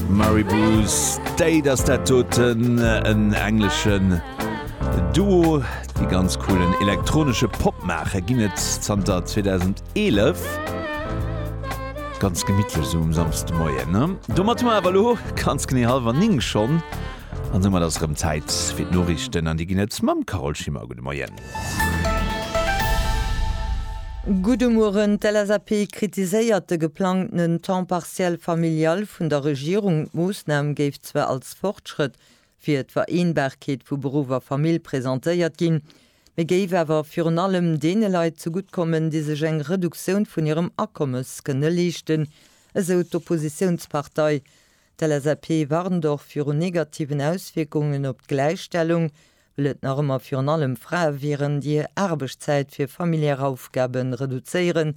Maribou State ass dat doten en engleschen Duo, déi ganz coolen elektronesche Pop maachen, ginn et zanter 2011. Ganz gemittlech esou um Samsdemoien, ne? Domat hu mer awer elo ganz genee hallwer 9 schonn an soumat ass erëm Zäit fir d'Noriichten an déi ginn et mam Carole Schimmer. Gudde Moien. Gudde Mueren, D'LSAP kritiséiert de geplangtenen Temps partiel familial vun der Regierung. D'Moossnam géif zwar als Fortschrëtt fir d'Vereenbarkeet vu Beruff a Famill presentéiert ginn, mee géif awer virun allem deene Leit zegutt kommen, déi sech eng Reduktioun vun hirem Akommes kënne leeschten, esou d'Oppositiounspartei. D'LSAP warnt och viru negativen Auswierkungen op d'Gläichstellung. Well et nach ëmmer virun allem Frae wieren, déi hir Aarbechtszäit fir familiär Aufgabe reduzéieren,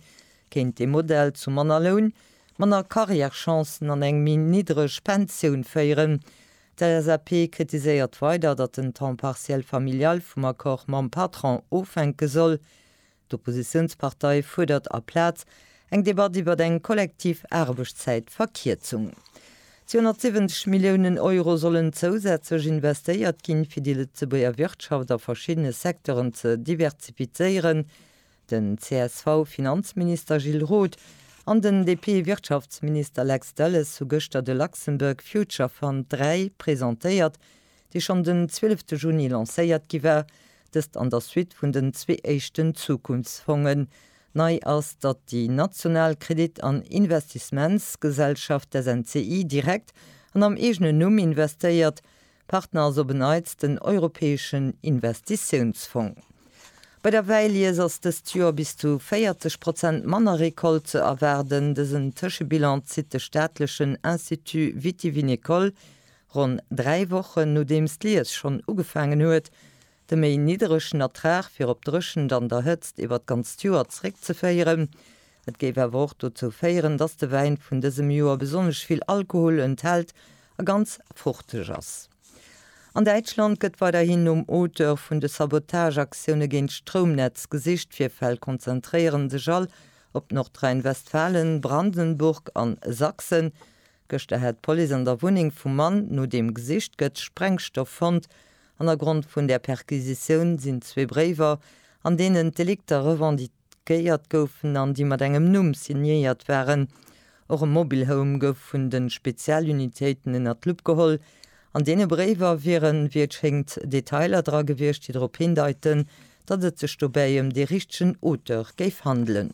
kéint dee Modell zu manner Loun, manner Carrièrechancen an eng méi niddreg Pensioun féieren. D'LSAP kritiséiert weider, datt den Temps partiel familial vum Accord mam Patron ofhänke soll. D'Oppositiounspartei fuerdert aplaz eng Debatt iwwer eng kollektiv Aarbechtszäitverkierzung. 270 Milliounen Euro sollen zousätzlech investéiert ginn, fir déi Lëtzebuerger Wirtschaft a verschiddene Secteuren ze diversifizéieren. Den CSV-Finanzminister Gilles Roth an den DP-Wirtschaftsminister Lex Delles hu gëschter de Luxembourg Future Fund 3 presentéiert, déi schonn den 12 te Juni lancéiert gi war, dëst an der Suite vun den zwee éischten Zukunftsfongen. Nei ass, datt déi national Kredit an Investissementsgesellschaft, d'SNCI, direkt an am eegenen Numm investéiert. Partner ass op en Neits den Europäeschen Investitiounsfong. Bei der Wäilies ass dëst Joer bis zu 40 Prozent manner Recolte ze erwaarden. Dësen Tëschebilan zitt de staatlechen Institut Vitivinicole Ronn dräi Wochen nodeems d'Lies schonn ugefaangen huet, de méi nidderegen Ertrag fir op d'Dréchent an der Hëtzt iwwer d'ganzt Joer zréckzeféieren. Et géif awer och dozou féieren, dass de Wäin vun dësem Joer besonnesch vill Alkohol enthält a ganz fruchteg ass. An Däitschland gëtt weiderhin nom Auteur vun de Sabotageaktioune géint d'Stroumnetz gesicht. Virfäll konzentréieren sech all op Nordrhein-Westfalen, Brandenburg an Sachsen. Gëschter hat d'Police an der Wunneng vum Mann no deem gesicht gëtt, Sprengstoff fonnt. Hannergrond vun där Perquisitioun sinn zwee Bréiwer, an deenen d'Delikter revendiquéiert goufen an déi mat engem Numm signéiert waren. Och e Mobile Home gouf vun de Spezialunitéiten ënner d'Lupp geholl. An deene Bréiwer wieren, wéi et schéngt, Detailer dra gewiescht, déi drop hindeiten, datt et sech dobäi ëm dee richtegen Auteur géif handelen.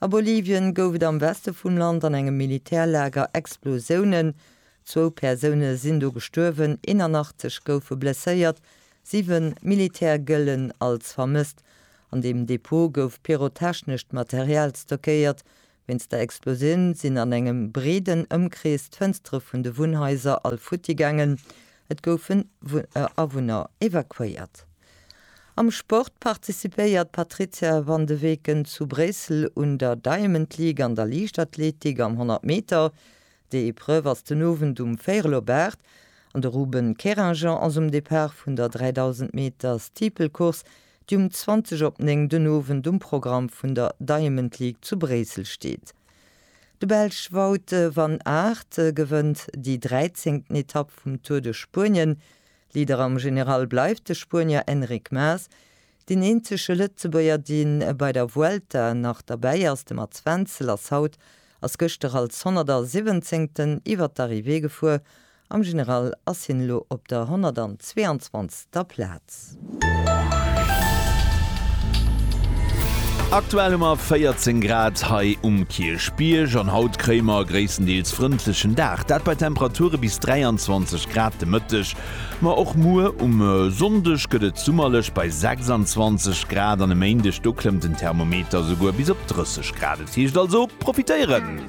A Bolivien gouf et am Weste vum Land an engem Militärlager Explosiounen. Zwou Persoune sinn do gestuerwen, 81 goufe blesséiert, siwen Militär gëllen als vermësst. An deem Depot gouf pyrotechnescht Material stockéiert. Wéinst der Explosioun sinn an engem breeden Ëmkrees d'Fënstere vun de Wunnhaiser all futti gaangen. Et goufen Awunner evakuéiert. Am Sport participéiert d'Patrizia van de Weken zu Bréissel un der Diamond League an der Liichtathletik am 100 Meter. Déi Epreuve ass den Owend um véierel op 8 an de Ruben Keringian ass um Depart vun der 3000 Meter Steeplecourse, déi um 20 op 9 den Owend um Programm vun der Diamond League zu Bréissel steet. De Belsch Wout van Aert gewënnt déi dräizéngten Etapp vum Tour de Spuenien. Leader am General bleift de Spuenier Enric Mas. Deen eenzege Lëtzebuerger dee bei der Vuelta nach derbäi ass, de Mats Wenzel, ass haut, ass gëschter als Honnertersiwwenzéngten iwwer d'Arrivée gefuer Am General ass hien elo op der 122. Plaz. Aktuell hu mer 14 Grad hei um Kierchbierg an haut kréie mer e gréisstendeels frëndlechen Dag, dat bei Temperature bis 23 Grad de Mëtteg. Ma och muer um Sonndeg gëtt et summerlech bei 26 Grad an e Méindeg, do klëmmt den Thermometer esouguer bis op 30 Grad. Et heescht also profitéieren!